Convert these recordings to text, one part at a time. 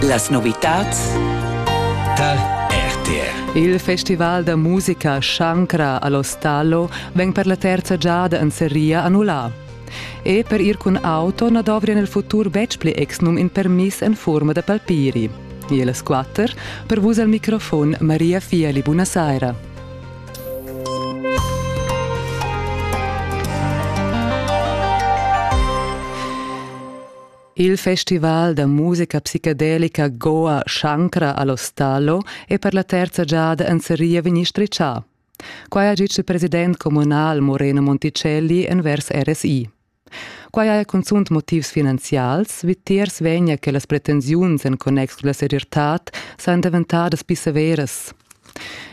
Las novitads tal RTR. Il festival da musica Shankra all'Ostallo vegn per la terza giada en seria annullà. E per ir cun auto na dovria nel futur betg pli exnum in permiss en forma da palpiri. E las quatter, per vus al microfon Maria Fiali, buonasera. Il festival da musica psicadelica Goa Shankara all'Ostallo è per la terza giada en seria vegnì stritschà. Quai ha ditg il president communal Moreno Monticelli envers RSI. Quai ha cunzunt motivs finanzials, vitiers vegnia che las pretensiuns en connex con la serietad san daventadas pli severas.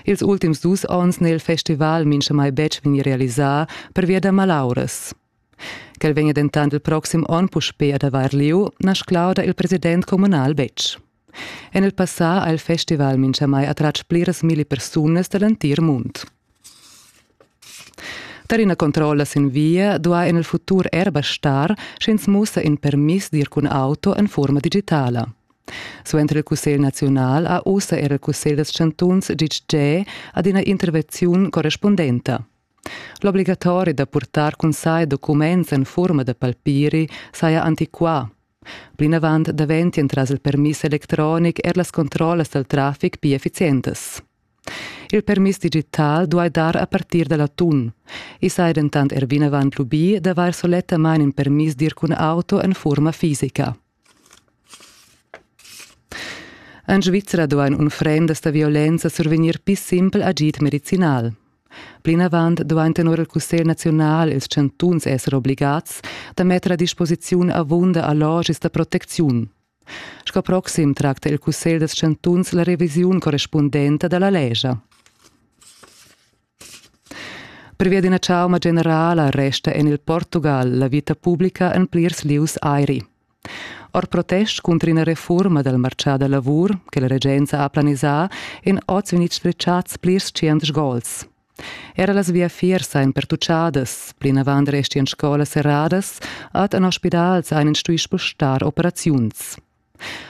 Ils ultims dus onns n'è il festival mincha mai betg vegni realisà pervia da malauras. Quel vegnia dentant il proxim onn puspè ad avair lieu, na sclauda il president communal betg. En il passà ha il festival minchamai attratg pliras milli persunas da l'entir mund. Tar ina controlla sin via duai en il futur er bastar, sch'ins mussa in permiss d'ir cun auto en furma digitala. Suenter il Cussegl naziunal ha ussa er il Cussegl dals chantuns ditg adina intervenziun correspundenta. L'obligatori da purtar cun sai documents en furma da palpiri saja antiquà. Plinavant daventien tras il permiss electronic er las controllas dal traffic pli efficientas. Il permiss digital duai dar a partir da l'atun. I sai dentant er vinavant lubì d'avair solettamain in permiss d'ir cun auto en furma fisica. En Svizra duain unfrendas da violenza survegnir pli simpel agid medicinal. Plinavant duain tenor il Cussegl naziunal ils chantuns esser obligads da metter a disposiziun avunda allogis da protecziun. Sco proxim tracta il Cussegl dals chantuns la revisiun correspundenta da la lescha. Pervia d'ina chauma generala resta en il Portugal la vita publica en plirs lieus airi. Or protest cunter ina refurma dal martgà da lavur che la regenza ha planisà en oz vegnids sfritgads plirs tschient gols. Era las viafiers ein pertucciadas, plinavant restian scolas serradas, ad en hospitals ein stuì spostar operaziuns.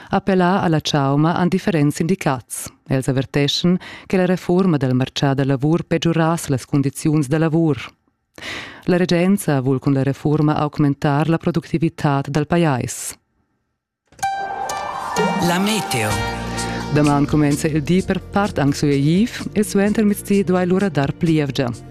Appellà alla chauma han differents sindicats. Els averteschan che la reforma del marcià da lavur peggiurass las condiziuns da lavur. La regenza vul cun la reforma augmentar la productivitad dal pajais. La meteo. Daman comenza il di per part anche su Egiv e suenter mezdi duai lura dar plievgia.